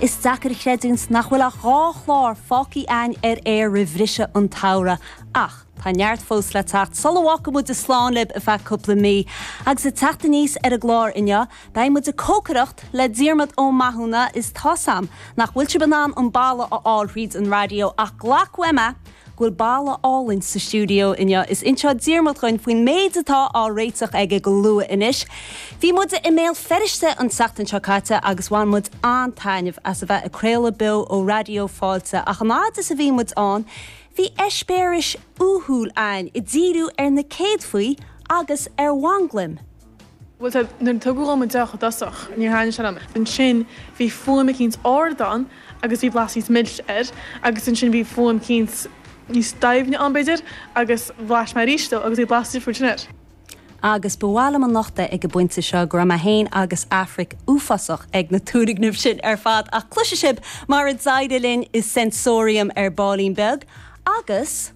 Is deacair creidiúint nach bhfuil ach dhá chlár fágthaí a'inn ar aer roimh bhriseadh an tsamhraidh. Ach tá neart fós le teacht. Sula bhfágfaidh muid slán libh ar feadh cúpla mí, agus ag teacht aníos ar an gclár inniu, beidh muid ag cócaireacht le Diarmaid Ó Mathúna is tá's a'm nach bhfuil sibh in ann an boladh a fháil thríd an raidió ach glac uaimse é! go bhfuil boladh álainn sa stiúideo inniu. Is inseoidh Diarmaid dhuinn faoin méid atá á réiteach aige go luath anois. Bhí muid i mBéal Feirste an tseachtain seo caite agus bhain muid an-taitneamh as a bheith ag craoladh beo ó Raidió Fáilte ach an fhad is a bhí muid ann bhí eispéireas uathúil a'inn ag díriú ar na céadfaí agus ar mhanglaim Bhuel, sea, nuair a tugadh dhom an deoch i dtosach, níor thaitnigh sé liom. Ansin, bhí fuaim eicínt ard ann agus bhí blas níos milse air, agus ansin bhí fuaim eicínt níos doimhne ann, b'fhéidir, agus bhlais mé aríst dhó agus bhí blas difriúil ansin air. Agus ba mhaith liom a nochtadh ag an bpointe seo go raibh mé féin agus Aifric uafásach ag na tomhais sin ar fad, ach cloisfidh sibh mar a d'éirigh linn i Sensorium ar baillín beag, agus.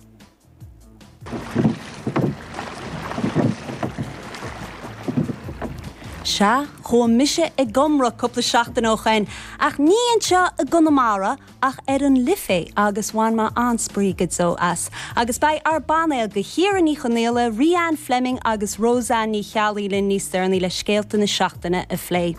Sea, chuaigh mise ag iomramh cúpla seachtain ó shoin, ach ní anseo i gConamara ach ar an Life agus bhain mé an-spraoi go deo as. Agus beidh ár bpainéal de Chiara Ní Chonaola, Rhianne Fleming agus Roseanne Ní Cheallaigh linn níos deireanaí le scéalta na seachtaine a phlé.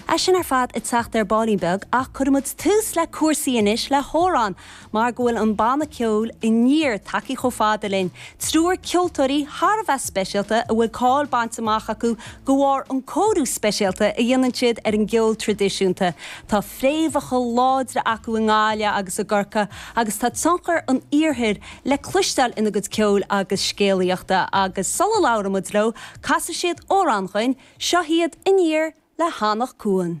É sin ar fad ag teacht ar baillín beag ach cuirfimid tús le cúrsaí anois le hamhrán. mar go bhfuil an banna ceoil Aniar tagtha chomh fada linn, triúr ceoltóirí thar a bheith speisialta a bhfuil cáil bainte amach acu de bharr an cóiriú speisialta a dhéanann siad ar an gceol tradisiúnta. Tá fréamhacha láidre acu i nGaillimh agus i gCorcaigh agus tá tionchar an iarthair le cloisteáil ina gcuid ceoil agus scéalaíochta agus sula labhróidh muid leo casfaidh siad amhrán dhuinn, seo iad Aniar le hAnach Cuain.